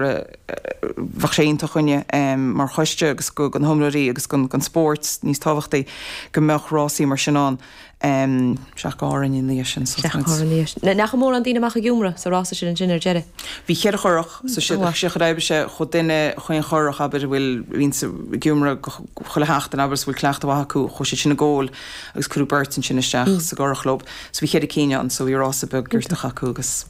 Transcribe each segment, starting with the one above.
bheadh sé iontach dhúinne mar choiste agus do na hiomróirí agus don spóirt níos tábhachtaí go mbeadh rásaí mar sin ann. An-tóir ina dhiaidh sin. An-tóir ina dhiaidh sin. An mórán daoine amach ag iomramh sa rása sin ansin ar deireadh. Bhí ceithre churach sa siocair oibre seo chuaigh duine chaon churach abair a bhfuil ansin ag iomramh chuile sheachtain abair is a bhfuil cleachtadh mhaith acu chuaigh siad sin i gceann agus cuireadh beirt ansin isteach sa gcurach leob. So bhí ceithre cinn ann so bhí rása beag giortach acu agus.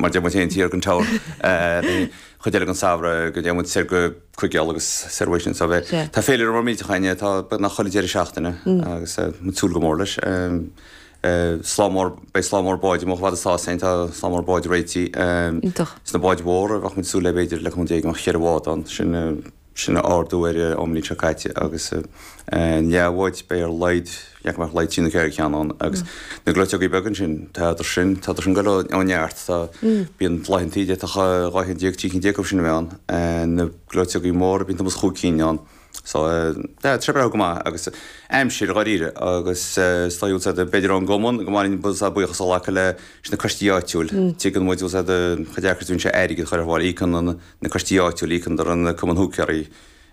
mar deir muid féin taobh den Droichead, an chuid eile den Samhradh, go dtéann muid soir go Cuigéal agus soir uaidh sin. So bhí, tá féilire maith i mbliana, tá, beagnach chuile deireadh seachtaine agus muid ag súil go mór leis. Slám mór, beidh slám mór báid amuigh i bhFéile an Dóilín, tá slám mór báid réitithe. Iontach. Is na báid mhóra a bheadh muid ag súil le b'fhéidir le cúig nó dea-mhaith cheithre bhád ann, sin, sin ardú ar an mbliain seo caite agus na leathbháid, beidh ar laghad déarfainn go mbeadh laghad trí nó ceithre cheann ann agus na gleoiteogaí beaga ansin, tádar sin, tádar sin ag dul ó neart go neart, tá, bíonn laethantaí de, tá dhá cheann déag, trí cinn déag acu sin a bheith ann. Na gleoiteogaí móra, bíonn timpeall's chúig cinn ann. So, yeah, tá sé ag breathnú go maith agus aimsir, dháiríre, agus is dóigh, tá a fhios agat, b'fhéidir ón gcumann, go mba mhaith linn buíochas a ghlacadh le, leis na coistí áitiúil, tuigeann muid, tá a fhios agat, chomh deacair is a bhíonn sé airgead a chur ar fáil, íocann na, na coistí áitiúla, íocann an cumann húicéirí,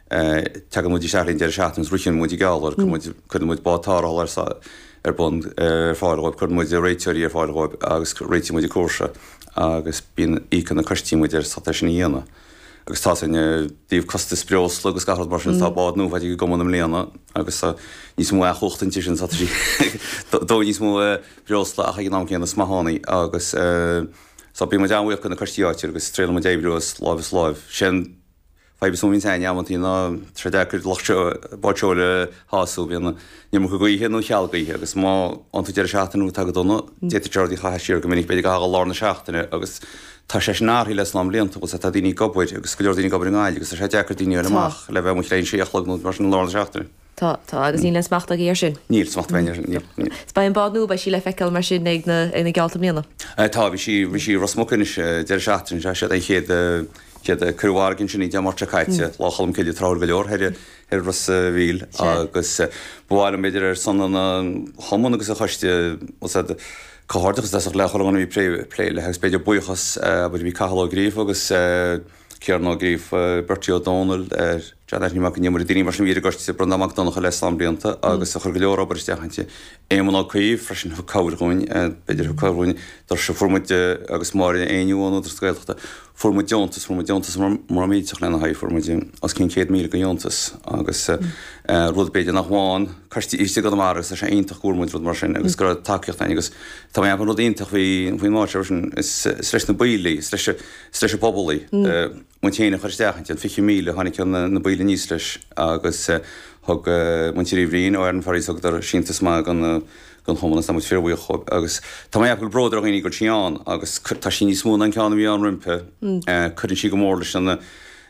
teagann muid isteach ar an deireadh seachtaine agus ritheann muid na geallta, cuireann muid bád tarrthála ar bun ar fáil dhóibh, cuireann muid réiteoirí ar fáil dhóibh agus réitíonn muid an cúrsa agus bíonn, íocann na coistí muid ar é sin a dhéanamh. Agus tá sin, faraor costais breosla agus gach rud mar sin, tá bád nua faighte ag an gcumann i mbliana agus tá níos mó each-chumhachta inti sin, tá sí ag dó níos mó breosla ach ag an am céanna is maith ann í agus, So, bíonn muid an-bhuíoch de na coistí áitiúil agus triaileann muid oibriú as láimh is láimh. Sé an fadhb is mó a bhíonn againn amantaí ná sé deacair lucht báid seoil a shású, bíonn an iomarca gaoithe nó cheal gaoithe agus má fhaigheann tú deireadh seachtaine atá go dona, d'fhéadfadh geallta a chaitheamh siar go minic, b'fhéidir le haghaidh lár na seachtaine agus tá sé sin athraithe le slám blianta anuas, tá daoine ag obair agus go leor daoine ag obair i nGaillimh agus tá sé deacair daoine a fháil amach le bheith amuigh le 6 a chlog nó mar sin lár na seachtaine. Tá, tá, agus níl aon smacht againn air sin. Níl smacht againn air sin, níl, níl. Is beidh an bád nua, beidh sí le feiceáil mar sin ag na, ag na geallta i mbliana? Eh, tá, bhí sí, bhí sí i Ros Muc anois deireadh seachtaine seo, sin é an chéad eh, chéad, chuir muid an aois sin í Dé Máirt seo caite, Lá Cholm Cille, tráthúil go leor thoir i, thoir Ros a' Mhíl agus eh ba mhaith liom b'fhéidir ar son an an Chumann agus an Choiste tá a fhios agat, comhghairdeachas, deis a ghlacadh le duine a bhí ag plé, plé léi agus b'fhéidir buíochas eh, b'fhéidir bhí Cathal Ó Gríofa agus eh, Ciarán Ó Gríofa, Bertie Ó Domhnaill, John Anthony Mac an Iomaire, daoine mar sin a bhí ar an gcoiste Breandán Mac Donncha le slám blianta agus a chuir go leor obair isteach inti. Éamon Ó Cuív freisin a thug cabhair dhúinn, b'fhéidir a thug cabhair dhúinn, doirse a oscailt, fuair muid agus Máire Ní Éinniú ón Údaras na Gaeltachta. Fuair muid deontas, fuair muid deontas mór millteach lena haghaidh, fuair muid os cionn céad míle de dheontas agus rud b'fhéidir nach bhfaigheann coiste arís i gConamara agus tá sé iontach go bhfuair muid rud mar sin agus go raibh tacaíocht againn agus tá sé ina rud iontach faoin áit seo freisin, is leis na baill í, is leis straitéis pobail í, muid féin a chur isteach inti, an 20,000, tháinig ceann de na baill aníos leis agus thug muintir Uí Bhriain ó Aran Ferries, thugadar síntiús maith don chumann agus tá muid fíorbhuíoch dhóibh agus tá mé ag ceapadh go bhfuil bród ar dhaoine go bhfuil sí ann agus tá sí níos mó ná an ceann a bhí ann roimpi, cuireann sí go mór leis an.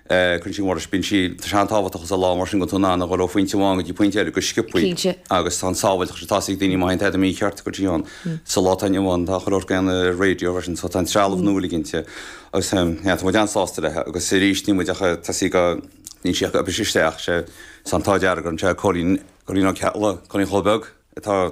cuireann sí mórtas, bíonn sí Tá sé an-tábhachtach agus a lá mar sin go bhfuil tú in ann a dhul ó phointe amháin go dtí pointe eile go sciopthaí agus tá an sábháilteacht sin tá sí ag daoine má théann tada mícheart go dtí ann. Sa lá atá inniu ann tá chuile shórt go dtí an radio freisin so tá an trealamh nua uilig inti agus tá muid an-sásta leithe agus arís níl muid ach tá sí níl sí ach ag briseadh isteach. Tá an t-ádh dearg orainn, sé Cóilín Cóilín Ó Ceallaigh, Cóilín chomh beag atá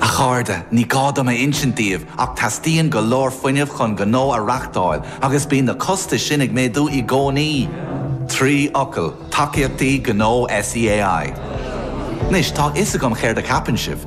A chairde, ní gá dom a insint daoibh ach teastaíonn go leor fuinnimh chun gnó a reachtáil agus bíonn na costais sin ag méadú i gcónaí. Trí fhocal, tacaíochtaí gnó SEAI. Anois, tá a fhios agam céard a cheapann sibh.